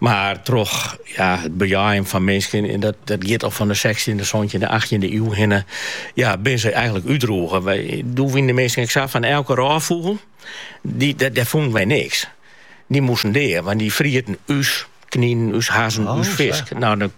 Mar troch ja, it bejeien fan minsken, en dat, dat giet al fan de sechstjinde, santjinde, achttjinde iuw hinne, ja, bin se eigenlik útroege. Wy, doe wienen de minsken ek sa fan elke rôffûgel, dy, dat, dêr fûnen wy niks. Dy moasten dea, want dy frieten ús kninen, ús hazzen, oh, ús fisk. Nou, dan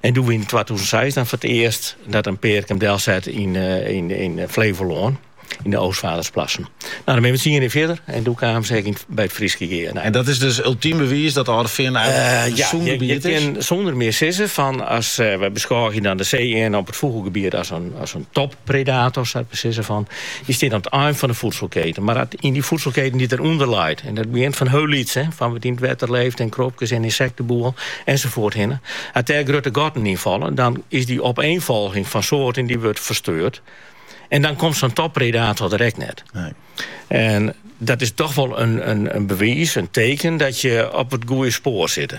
En doe wie yn twatûzen seis foar it earst dat in pear him delset yn, yn, yn Flevolân yn de Oostvaardersplassen. Nou, dan ben we tsien jier fierder en doe kaam se ek yn, by It Fryske Gea. Nou, en dat is dus ultiem bewiis dat Alde Feanen in sûn gebiet is? Ja, je kinne sûnder mear sizze fan as, we beskôgje dan de see-earn op it fûgelgebiet as in, as in toppredator, dat wol sizze fan. Dy stiet oan it ein fan de foedselketen, mar ek yn dy foedselketen dy't derûnder leit. En dat begjint fan hiel lyts, fan wat yn it wetter leeft en krobkes en ynsekteboel ensafoarts hinne. As dêr grutte gatten yn falle, dan is dy opeenfolging fan soarten dy wurdt fersteurd. En dan komt sa'n toppredator der ek net. Nee. En dat is toch wol in, in, in bewiis, in teken dat je op it goeie spoar sitte.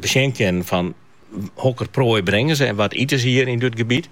besjen kinnen fan hokker proai bringe se en wat ite se hjir yn dit gebiet.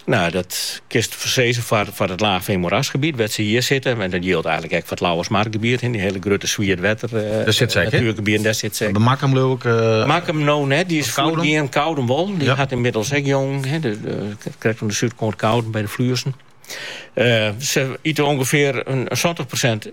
Nou, dat kinst sizze foar, foar it laagveen moerasgebiet wêr't se hjir sitte. En dat jildt eigenlik ek foar it Lauwersmargebiet, dy hele grutte swietwetter natuergebieten, dêr sitte se ek. By Makkum leau ik. Makkum no net, dy is fuortgien. Koudum wol, dy hat ynmiddels ek jongen, krekt oan de súdkant Koudum by de Fluezen. Se ite ûngefear in santich persint.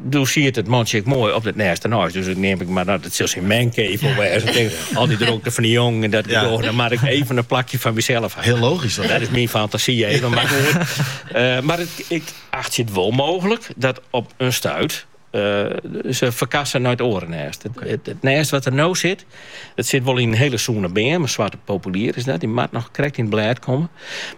Doe siet it mantsje ek moai op it nêst derneist. Dus dat neam ik mar, dat sil syn mancave wêze. Al dy drokte fan dy jongen en dat ja. Dêr, dan maak ik even in plakje fan mysels. Hiel logysk. Dat, dat is myn fantasy even. Mar, uh, mar it, ik achtsje it wol mooglik dat op in stuit uh, se ferkasse nei it oare nêst. It, it, nêst wat der no sit, It sit wol yn in hiele sûne beam, in swarte populier is dat, dy moat noch krekt yn it blêd komme.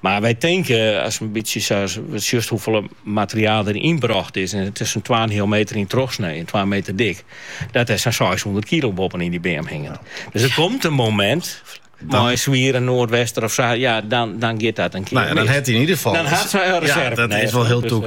Mar wy tinke, aste in bytsje sa sjochst hoefolle materiaal der ynbrocht is, en it is sa'n twaenheal meter yn trochsnee en twa meter dik, dat der sa'n seishûndert kilo boppenin dy beam hinget. Dus der komt in momint, mei in swiere noardwester of sa, ja, dan giet dat in kear mis. Dan ha se in reserve nêst. Dat is wol hiel tûk.